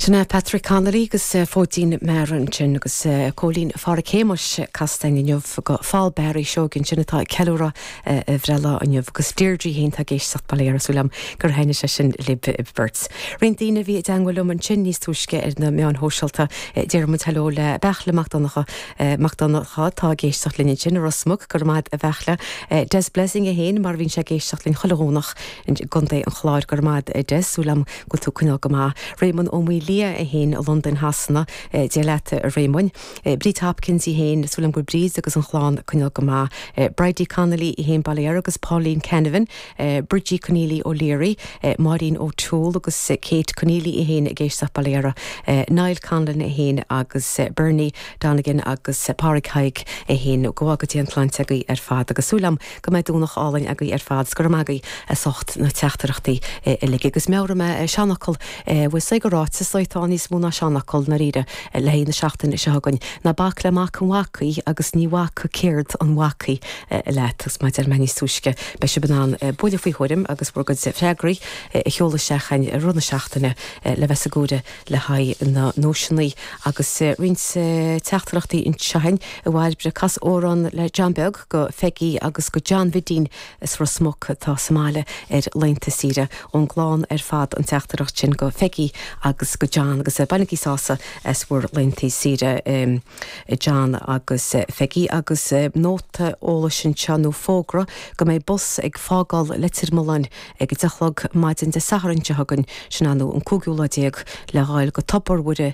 Sin Patrick Connolly agus Fóidín Meara ansin agus Cóilín Phádraig Shéamuis casta againn inniu go Phaul Barry Seoighe ansin atá ag ceiliúradh a bhreithlá inniu agus Deirdre fhéin tá ag éisteacht bail ó Dhia uirthi súil agam gur thaithnigh sé sin libh beirt. Roinnt daoine a bhí i dteagmháil liom ansin níos túisce ar na meáin shóisialta déarfaidh muid heileo le Beartla Mac Donncha atá ag éisteacht linn ansin i Ros Muc go raibh maith agat a Bheartla Des Blessing é fhéin mar a bhíonn sé ag éisteacht linn chuile Dhomhnach I gContae an Chláir go raibh maith agat, súil agam go bhfuil tú ag coinneáil go maith. Réamonn Ó Maolaodha é féin, Londain Shasana, Dia leat a Réamoinn. Bríd Hopkins í féin, súil agam go bhfuil Bríd agus an chlann ag coinneáil go maith. Bridie Connolly í féin, bail ó Dhia uirthi agus Pauline Canavan, Bridgie Conneely O'Leary, Máirín O Toole agus Kate Conneely í féin ag éisteacht bail ó Dhia uirthi. Niall Conlon é féin agus Bernie Donegan agus Pádraig Thaidhg é féin. Go bhfága Dia an tsláinte agaibh ar fad agus súil agam. Go mbeidh Domhnach álainn agaí ar fad 's go raibh maith agaí as ucht na teachtaireachtaí uilig. Agus meabhróidh mé an seanfhocal, bhuel sílim gur ráiteas é atá níos mó ná seanfhocal, ndáiríre, le haghaidh na seachtaine seo againn. Ná bac le mac an bhacaigh agus ní bhacfaidh céard an bhacaigh leat. Agus mar a deir mé níos túisce, beidh sibh in ann bualadh faoi thuairim agus bhur gcuid freagraí a sheoladh isteach againn i rith na seachtaine le bheith sa gcomhaireamh le haghaidh na nduaiseannaí. Agus roinnt teachtaireachtaí anseo againn. A Bhairbre, cas amhrán le John Beag. go Pheigí agus go John Bhidín as Ros Muc atá sa mbaile ar laethanta saoire. Ón gclann ar fad an teachtaireacht sin go Pheigí agus go John agus bainigí sásamh as bhur laethanta saoire a John agus a Pheigí. Agus nóta eolais anseo nó fógra go mbeidh bus ag fágáil Leitir Mealláin ag a deich a chlog maidin Dé Sathairn seo chugainn, sin an an cúigiú lá déag, le ghoil go Tobar Mhuire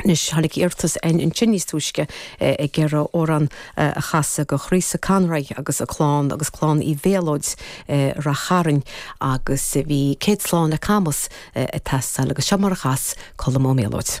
Anois, tháinig iarratas ansin níos túisce ag iarraidh amhrán a chasadh go Theresa Conroy agus a clann agus clann Uí Mhéalóid i Rath Chairn agus bhí céad slán le Camas ag teastáil agus seo mar a chas Colm Ó Méalóid.